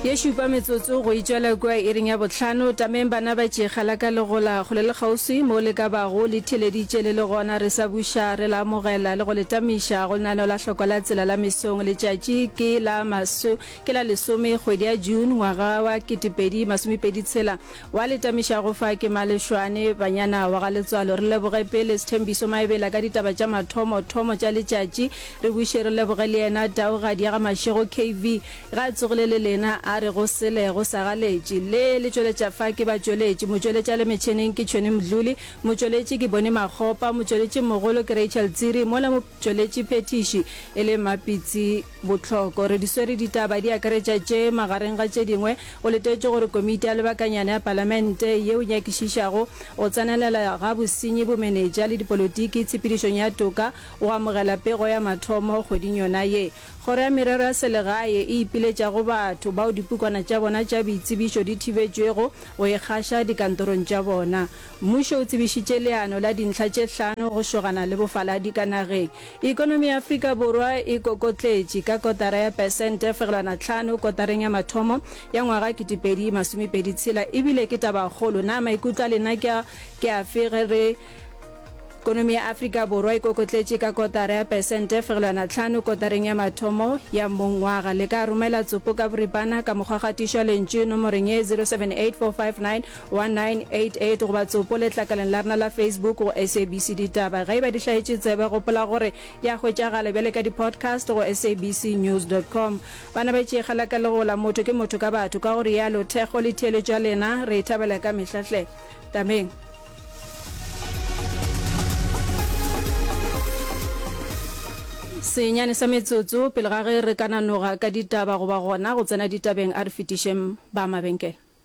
ye šupa metsotso go itšwela kua iring ya bohlano tameng bana ba tšega la ka legola go le le kgauswi mo le ka bago le theleditše le le gona re sa buša re la amogela le go le tamiša go lenaneo la hlokwa la tsela la mesong letšatši ke la maso ke la lesome kgwedi ya june ngwaga wa ketepedi masomepedi tshela Wa le tamišago fa ke Malešwane. Banyana wa ga Letswalo, re leboge pele Sthembiso Maebela ka ditaba tša mathomo thomo tša letšatši. Re buše re leboge le yena Taugadi ya ga Mašego KV, ge a tsogile le lena a re go sele go sa ga letši. Le le tšweletša fa ke batšweletši. Motšweletša le metšheneng ke Tšhweni Mdluli, motšweletši ke Boni Makgopa, motšweletšimogolo ke Rachel Tsiri, mola motšweletšiphethiši e le Mmapitsi. Bohloko. Re di swere ditaba di akaretša tše, magareng ga tše dingwe, go letetšwe gore Komiti ya Lebakanyana ya Palamente ye o nyakišišago go tsenelela ga bosenyi, bomenetša le dipolotiki tshepedišong ya toka o amogela pego ya mathomo kgweding yona ye. Kgoro ya Merero ya Selegae e ipiletša go batho bao dipukwana tša bona tša boitsebišo di thibetšwego go e gaša dikantorong tša bona. Mmušo o tsebišitše leano la dintlha tše hlano go šogana le bofaladi ka nageng. Ekonomi ya Afrika Borwa e kokotletše ka kotara ya pesente fegelwana tlhano kotareng ya mathomo ya ngwaga kitipedi masomepedi tshela ebile ke tabakgolo. Na maikutlo a lena ke a ke afe ge re Ekonomi ya Afrika Borwa e kokotletše ka kotara ya pesente fegelwana tlhano kotareng ya mathomo ya mongwaga? Le ka romela tsopo ka boripana ka mokgwa kgatišo ya lentšu nomoreng ye 078459 1988 goba tsopo letlakaleng la rena la Facebook go SABC Ditaba. Ge e ba di hlaetše tsebe, gopola gore di a hwetšagala bjale ka di-podcast go sabcnews.com. Bana ba tšee kgalaka le go la motho ke motho ka batho, ka go rialo Thekgo le theeletšo ya lena re e thabela ka mehla hle. Tameng. Senyane sa metsotso pele ga ge re ka nanoga ka ditaba goba gona go tsena ditabeng, a re fetišeng ba mabenkele.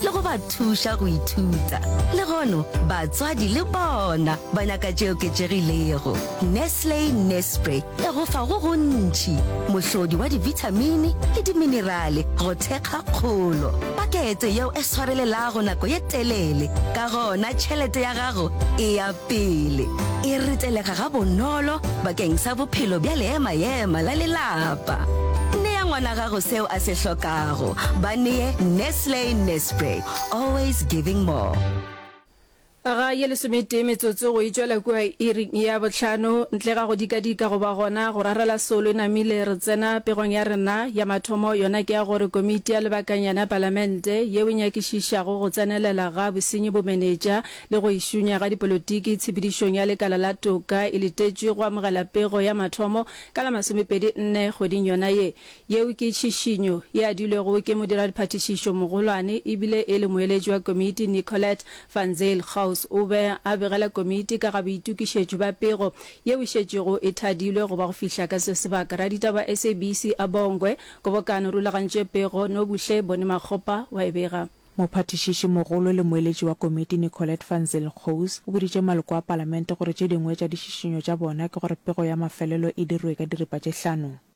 le go ba thuša go ithuta. Legono batswadi le bona ba nyaka tše oketšegilego. Nestle Nespre e go fa go gontši, mohlodi wa dibithamini le diminerale go thekga kgolo. Pakete yeo e swarelelago nako ye telele, ka gona tšhelete ya gago e ya pele. E ritelega gabonolo bakeng sa bophelo bja leema-ema la lelapa. Nea ngwana gago seo a se hlokago. Ba nee Nestle. Nestle Nespre, always giving more. ga ye lesometee metsotso go itšwela kua iri ya bohlano ntle ga go dikadika goba gona go rarela solo e namile re tsena pegong ya rena ya mathomo yona ke ya gore komiti ya lebakanyana ya palamente yeo e nyakišišago go tsenelela ga bosenyi bo menetša le go išunya ga dipolotiki tshepedišong ya lekala la toka e letetšwe go amogela pego ya mathomo ka la masomepedi nne kgweding yona ye Yeo ke tšhišinyo e adilwego ke modira-diphathišišo mogolwane e bile e le moeletši wa komiti Nicolette van Zyl. Gauws o be a begela komiti ka ga boitokišetšo bja pego yeo e šetšego e thadilwe go ba go fihla ka se sebaka. Raditaba wa SABC a Bongwe, Kgobokano rulagantše pego Nobuhle Bonimakgopa wa e bega. Mophathišiši mogolo le moeletši wa komiti Nicolette van Zyl Gauws o boditše maloko a palamente gore tše dingwe tša ditšhišinyo tša bona ke gore pego ya mafelelo e dirwe ka diripa tše hlano.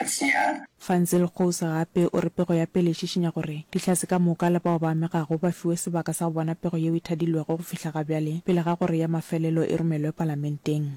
Letshehare. Van Zyl Gouws gape o re pego ya pele e šišinya gore Dihlatse ka moka le bao ba amegago ba fiwe sebaka sa go bona pego yeo e thadilwego go fihla ga bjale pele ga gore ya mafelelo e romelwe Palamenteng.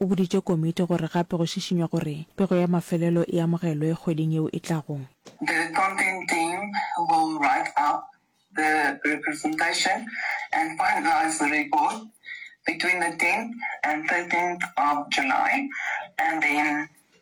O boditše komiti gore gape go šišinywa gore pego ya mafelelo e amogelwe kgweding yeo e tlago.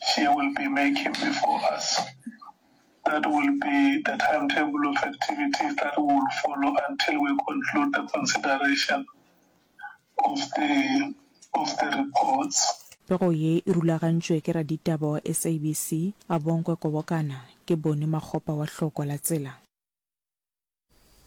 She will be making before us. That will be the timetable of activities that we will follow until we conclude the consideration of the of the reports. Pego ye e rulagantšwe ke raditaba wa SABC, Abongwe Kobokana, ke Boni Makgopa wa Hloko la Tsela.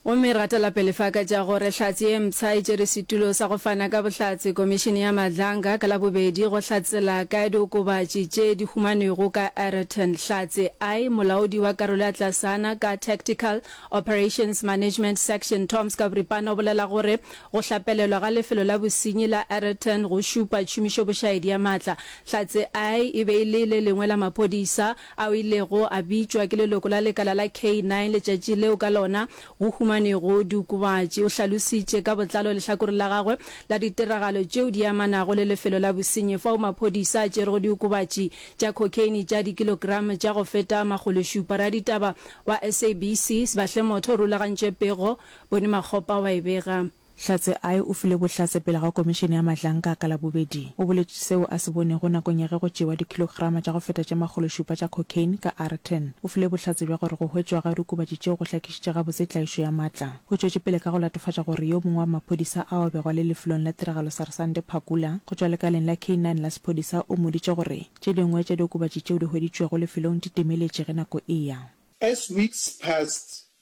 Gomme ra tla pele fa ka tša gore Hlatse ye mpsha e tšere setulo sa go fana ka bohlatse Komišene ya Madlanga ka Labobedi go hlatsela ka diokobatši tše di humanwego ka Ayrton. Hlatse I, Molaodi wa Karolo ya Tlasana ka Tactical Operations Management Section Tom Skabripana o bolela gore go hlapelelwa ga lefelo la bosenyi la Ayrton go šupa tšhomišobošaedi ya maatla. Hlatse I e be e le le lengwe la maphodisa a o ilego a bitšwa ke leloko la lekala la K-9 letšatši leo ka lona go humanego diokobatši. O hlalositše ka botlalo lehlakore la gagwe la ditiragalo tšeo di amanago le lefelo la bosenyi fao maphodisa a tšerego diokobatši tša cocaine tša dikilogramo tša go feta makgološupa. Raditaba wa SABC Sbahle Motho o rulagantše pego, Bony Makgopa wa e bega. Hlatse I o file bohlatse pele ga komišene ya Mahlanka ka Labobedi. O boletše seo a se bonego nakong ya ge go tšewa dikhilograma tša go feta tše makgološupa tša cocaine ka Aarten. O file bohlatse bja gore go hwetšwa ga diokobatši tšeo go hlakišitše gabotse tlaišo ya matla. O tšwetše pele ka go latofatša gore yo mongwe wa maphodisa ao a bego a le lefelong la tiragalo Sarsante Phakula go tšwa lekaleng la K-nine la sephodisa o mmoditše gore tše dingwe tša diokobatši tšeo di hweditšwego lefelong di timeletše ge nako e ya. As weeks passed,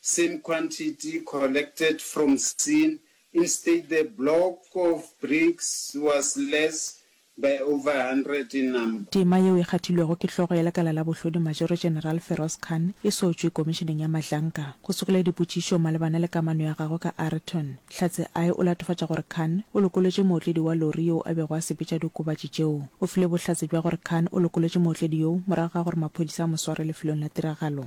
Same quantity collected from Seen instead the block of bricks was less by over hundred in number. Tema yeo e kgathilwego ke hlogo ya lekala la bohlodi Majoro General Feroz Khan e sotšwe Komišeneng ya Mahlanka go sokela dipotšišo malebana le kamano ya gagwe ka Ayrton. Hlatse I o latofatša gore Khan o lokolotše mootledi wa lori yoo a bego a sepetša diokobatši tšeo. O file bohlatse bja gore Khan o lokolotše mootledi yoo morago ga gore maphodisa a mo sware lefelong la tiragalo.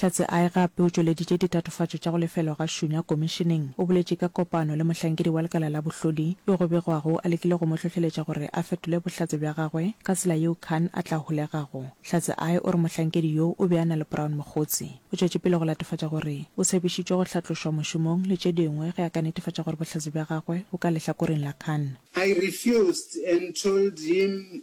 Hlatse I gape o tšweleditše ditatofatšo tša go lefelwa ga Shunya Komišeneng. O boletše ka kopano le mohlankedi wa lekala la bohlodi yo go begwago a lekile go mo hlohleletša gore a fetole bohlatse bja gagwe ka tsela yeo Khan a tla holegago. Hlatse I o re mohlankedi yo o be a na le Brown Mogotsi. O tšwetše pele go latofatša gore o tshepišitšwe go hlatlošwa mošomong le tše dingwe ge a ka netefatša gore bohlatse bja gagwe bo ka lehlakoreng la Khan. I refused and told him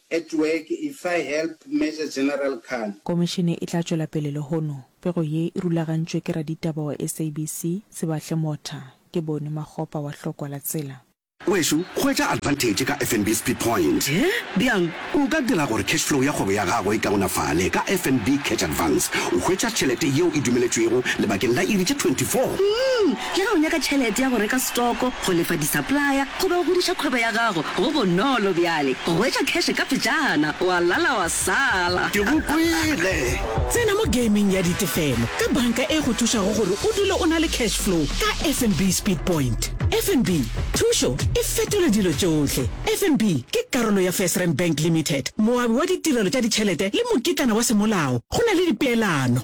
At work, Efa help, Major General Khan. Komišene e tla tšwela pele lehono. Pego ye e rulagantšwe ke raditaba wa SABC, Sebahle Motha. Ke Boni Makgopa wa Hlokwa la Tsela. Wešu, hwetša advantage ka FNB Speed Point. He? Bjang? O ka dira gore cash flow ya kgwebo ya gago e kaonafale ka FNB Catch Advance. O hwetša tšhelete yeo e dumeletšwego lebakeng la iri tše 24. Umm! Le ge o nyaka tšhelete ya go reka setoko, go lefa disaplaya goba go godiša kgwebo ya gago, go bonolo bjale go hwetša kheshe kapejana, wa lala wa sala. Ke go kwele! Tsena mo gaming ya ditefelo ka banka e go thušago gore o dule o na le cash flow ka FNB Speed Point. FNB, thušo e fetola dilo tšohle! FNB ke karolo ya FirstRand Bank Limited, moabi wa ditirelo tša ditšhelete le mokitlana wa semolao. Go na le dipeelano.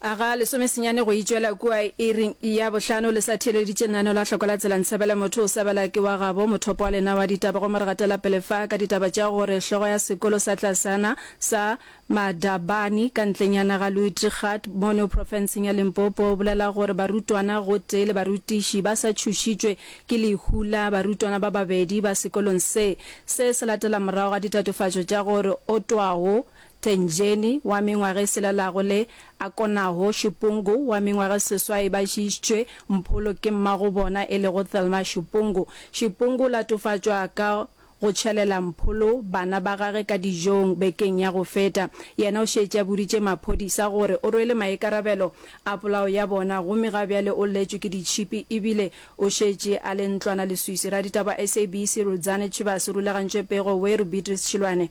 A ga lesome senyane go itšwela kua iri ya bohlano le sa theeleditše lenaneo la hloko la tsela Ntshabela motho o sa bela ke wa gabo mothopo wa lena wa ditaba gomme re gatela pele fa ka ditaba tša gore hlogo ya sekolo sa tlasana sa Madabani ka ntlenyana ga Luitgard mono profenseng ya Limpopo o bolela gore barutwana gotee le barutiši ba sa tšhošitšwe ke lehu la barutwana ba babedi ba sekolong se se se latela morago ga ditatofatšo tša gore otwago Tenjeni, wa mengwaga e selelago le Akonaho Shupungu, wa mengwaga e seswai ba šiišitšwe mpholo ke mmago bona e lego Thelma Shupungu. Shupungu o latofatšwa ka go tšhelela mpholo bana ba gage ka dijong bekeng ya go feta. Yena o šetše a boditše maphodisa gore o rwele maikarabelo a polao ya bona gomme ga bjale o lletšwe ke ditšhipi ebile o šetše a le ntlwana leswiswi. Raditaba wa SABC Rudzani Chivas o rulagantšwe pego Weru Beatrice Chilwane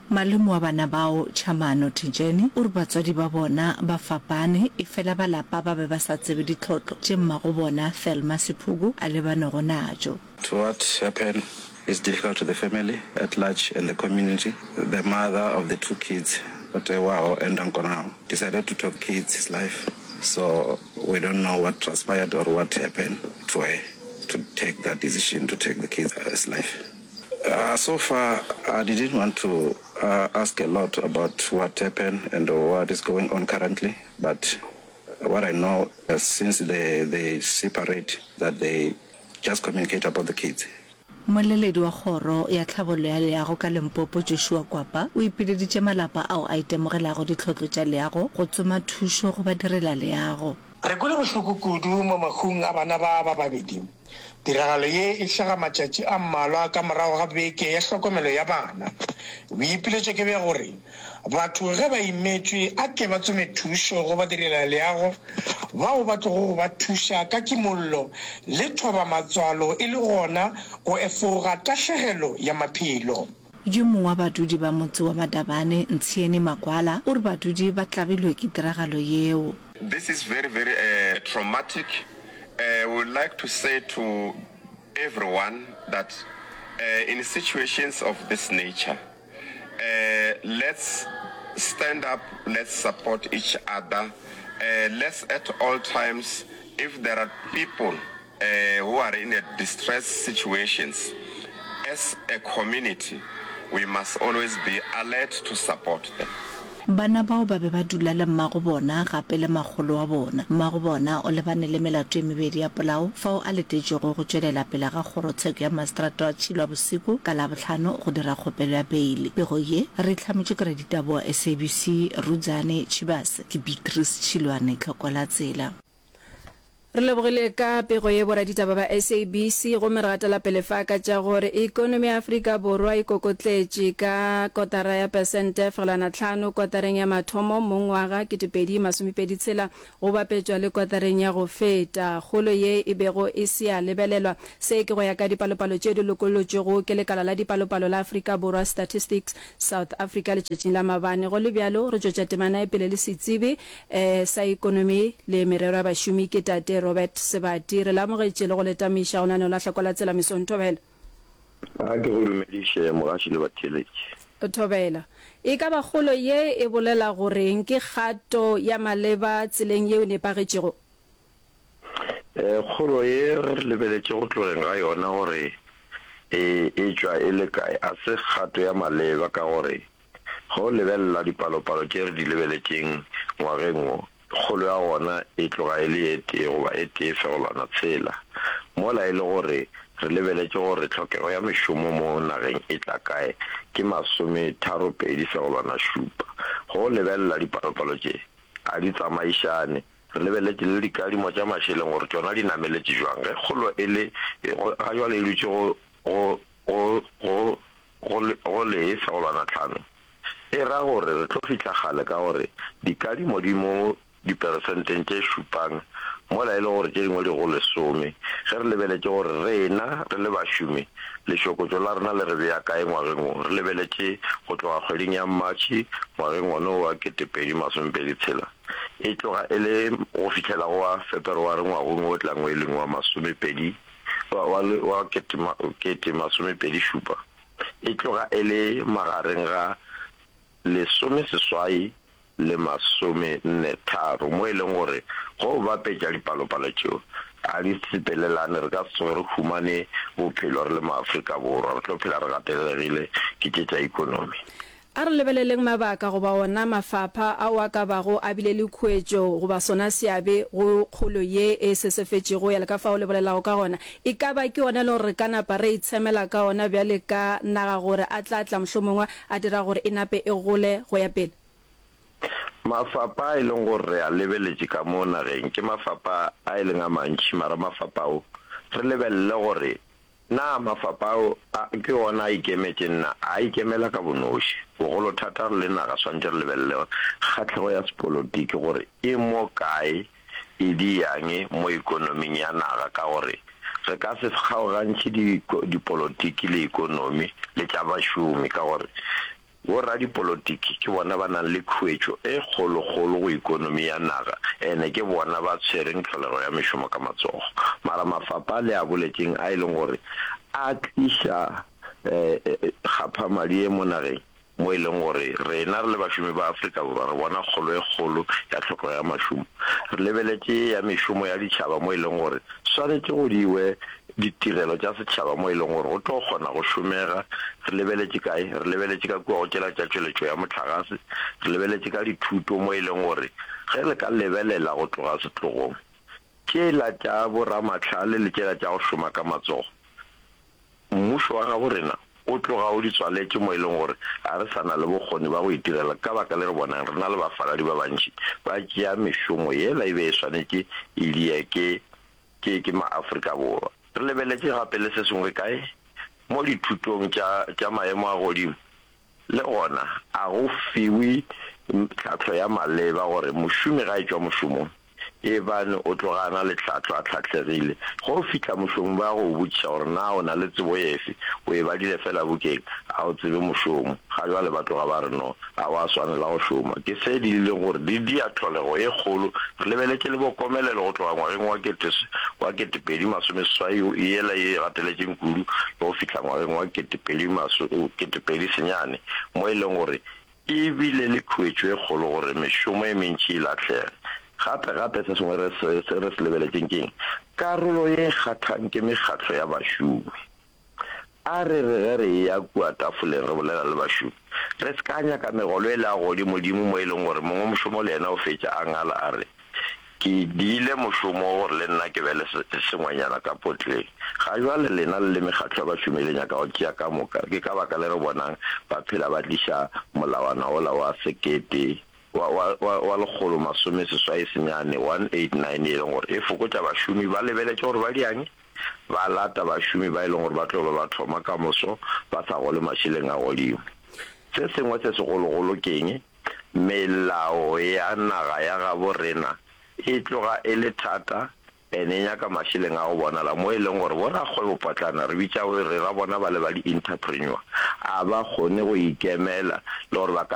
Malome wa bana bao, Tšhamano Thijeni, o re batswadi ba bona ba fapane efela ba lapa ba be ba sa tsebe ditlhotlo tše mmagobona, Thelma Sephuku, a lebanego natšo. To what happened is difficult to the family at large and the community. The mother of the two kids, Otewaho and Nonkonaho, decided to top kids' life so we don't know what transpired or what happened to her to take that decision to take the kids' life. So far I didn't want to ask a lot about what happen and what is going on currently but what I know since the the separate that they just communicate about the kids. Mmoleledi wa Kgoro ya Tlhabollo ya Leago ka Limpopo Joshua Kwapa o ipileditše malapa ao a itemogelago ditlhotlo tša leago go tsoma thušo go badirela leago. Re kwele bohloko kudu mo mahung a bana ba ba babedi. Tiragalo ye e hlaga matšatši a mmalwa ka morago ga beke ya hlokomelo ya bana. Boipiletšo ke bja gore batho ge ba imetšwe a ke ba tsome thušo go badirelaleago bao ba tlogo go ba thuša ka kimollo le thoba matswalo e le gona go efoga tahlegelo ya maphelo. Yo mongwe wa badudi ba motse wa Madabane, Ntshieni Makwala, o re badudi ba tlabilwe ke tiragalo yeo. This is very very traumatic, we would like to say to everyone that in situations of this nature let's stand up, let's support each other, let's at all times if there are people. who are in a distressed situations, as a community we must always be alert to support them. Bana bao ba be ba dula le mmago bona gape le makgolo wa bona. Mmago bona o lebane le melato e mebedi ya polao fao a letetšwego go tšwelela pele ga Kgorotsheko ya Maseterata wa Tšhilwa Bosiku ka Labohlano go dira kgopelo ya beile. Pego ye re e hlametšwe ke raditaba wa SABC, Rudzani Tshibase. Ke Beatrice Tšhilwane, Tlhokola Tsela. Re lebogile ka pego ye boraditaba ba SABC gomme re gatela pele fa ka tša gore ekonomi ya Afrika Borwa e kokotletše ka kotara ya pesente fegelwana tlhano kotareng ya mathomo mo ngwaga 2026 go bapetšwa le kotareng ya go feta. Kgolo ye e bego e se ya lebelelwa. Se ke go ya ka dipalopalo tše di lokollotšwego ke lekala la dipalopalo la Afrika Borwa Statistics South Africa letšatšing la mabane. Go le bjalo re tšwetša temana ya pele le setsebi I sa Ekonomi le Merero ya Bašomi ke Tate Robert Sebati. Re le amogetše le go le tamiša go na no lahla kwa la tsela mesong. Thobela. A ke go dumediše mogaši le batheeletši. Thobela. E ka ba kgolo ye e bolela go re'ng? Ke kgato ya maleba tseleng yeo nepagetšego? E, kgolo ye re lebeletše go tlogeng ga yona gore e e tšwa e le kae a se kgato ya maleba ka gore Ge o lebelela dipalopalo tše re di lebeletšeng ngwageng wo, kgolo ya gona e tloga e le e tee goba e tee fegelwana tshela. Mola e le gore re lebeletše gore tlhokego ya mešomo mo nageng e tla kae, ke masometharo-pedi fegelwana šupa. Ge o lebelela dipalopalo tše, ga di tsamaišane. Re lebeletše le dikadimo tša mašeleng gore tšona di nameletše bjang ge kgolo e le ga bjale e dutše go Go, go, go le, go le fegelwana tlhano, e ra gore re tlo fihla kgale ka gore dikadimo di mo diperesenteng tše šupang, mola e le gore tše dingwe di go lesome, ge re lebeletše gore rena re le bašomi lešokotšo la rena le re bea kae ngwageng wo. Re lebeletše go tloga kgweding ya Matšhe ngwageng wona wo wa ketepedi masomepedi tshela, e tloga e le go fihlela go wa Feperware ngwagong wo tlang wo e leng wa masomepedi wa wa le wa kete ma kete masomepedi šupa e tloga e le magareng ga lesome seswai le masome nne tharo mo e leng gore go bapetša dipalopalo tšeo ga di sepelelane re ka se tsoge re humane bophelo re le maAfrika Borwa re tlo phela re gatelelegile ke tše tša ekonomi. A re lebeleleng mabaka goba ona mafapha ao a ka bago a bile le khuetšo goba sona seabe go kgolo ye e sesefetšego ya le ka fao le bolelago ka gona. E ka ba ke ona elego gore re ka napa ra itshemela ka ona bjale ka naga gore a tla tla mohlomongwe a dira gore e nape e gole go ya pele. Mafapha a e leng gore re a lebeletše ka mo nageng ke mafapha a e leng a mantši mara mafapha ao re lebelele gore Na mafapha ao a ke ona a ikemetše? Nna, a a ikemela ka bonoši. Bogolo thata re le naga swantše re lebelele gore kgahlego ya sepolotiki gore e mo kae, e di yang mo ekonoming ya naga ka gore re ka se kgaogantšhe dipolotiki le ekonomi le tša bašomi ka gore Boradipolotiki ke bona ba nang le khuetšo e kgolokgolo go ekonomi ya naga ene ke bona ba tshwereng tlholego ya mešomo ka matsogo. Mara mafapa le a boletšeng a e leng gore a tliša kgaphamadi ye mo nageng mo e leng gore rena re le bašomi ba Afrika Borwa re bona kgolo e kgolo ya tlhokego ya mašomo. Re lebeletše ya mešomo ya ditšhaba mo e leng gore swanetše go diwe ditirelo tša setšhaba mo e leng gore go tlo kgona go šomega, re lebeletše kae? Re lebeletše ka kua go tšela tša tšweletšo ya mohlagase, re lebeletše ka dithuto mo e leng gore ge re ka lebelela go tloga setlogong, tšela tša boramahlale le tšela tša go šoma ka matsogo, mmušo wa gabo rena o tloga o di tswaletše mo e leng gore ga re sa na le bokgoni ba go itirela ka baka le re bonang re na le bafaladi ba bantši ba tšea mešomo yela e be e swanetše e dieke ke, ke maAfrika Borwa. Re lebeletše gape le se sengwe kae? Mo dithutong tša, tša maemo a godimo, le gona, a go fiwe tlhahlo ya maleba gore mošomi ga etšwa mošomong, eebane o tloga a na le tlhahlo, a tlhahlegile. Ge o fihla, mošomi ba ya go o botšiša gore na o na le tsebo efe, o e badile feela bukeng, a o tsebe mošomo. Ga bjale ba tloga ba re, No. Ga wa swanela go šoma. Ke se dirileng gore di dia tlholego e kgolo. Re lebeletše le bokomelelo go tloga ngwageng wa kete wa kete pedi masome seswai go yela ye e gateletšeng kudu le go fihla ngwageng wa kete pedi maso kete pedi senyane mo e leng gore e bile le khuetšo e kgolo gore mešomo e mentši e lahlege. Gape gape se sengwe re se re se lebeletšeng keng? Karolo ye e kgathang ke mekgatlo ya bašomi. A re re ge re eya kua tafoleng re bolela le bašomi, re se ka nyaka megolo e le ya godimodimo mo e leng gore mongwe mošomo le yena o fetša a ngala a re, Ke diile mošomo wo gore le nna ke be le sengwenyana ka potleng. Ga jwale lena le le mekgatlo ya bašomi le nyaka go tšea ka moka, ke ka baka le re bonang ba phela ba tliša molawana wola wa sekete, wa, wa, wa, wa lekgolo masome seswai senyane, 189, e leng gore e fokotša bašomi ba lebeletše gore ba diange. ba lata bašomi ba e lego gore ba tlo ba ba thoma ka moso ba sa gole mašeleng a godimo. Se sengwe se segologolo ke'ng? Melao ya naga ya gabo rena e tloga e le thata and e nyaka mašeleng a go bonala mo e leng gore bo rakgwebopotlana re bitša re ra bona ba le ba di-interpreneur a ba kgone go ikemela le gore ba ka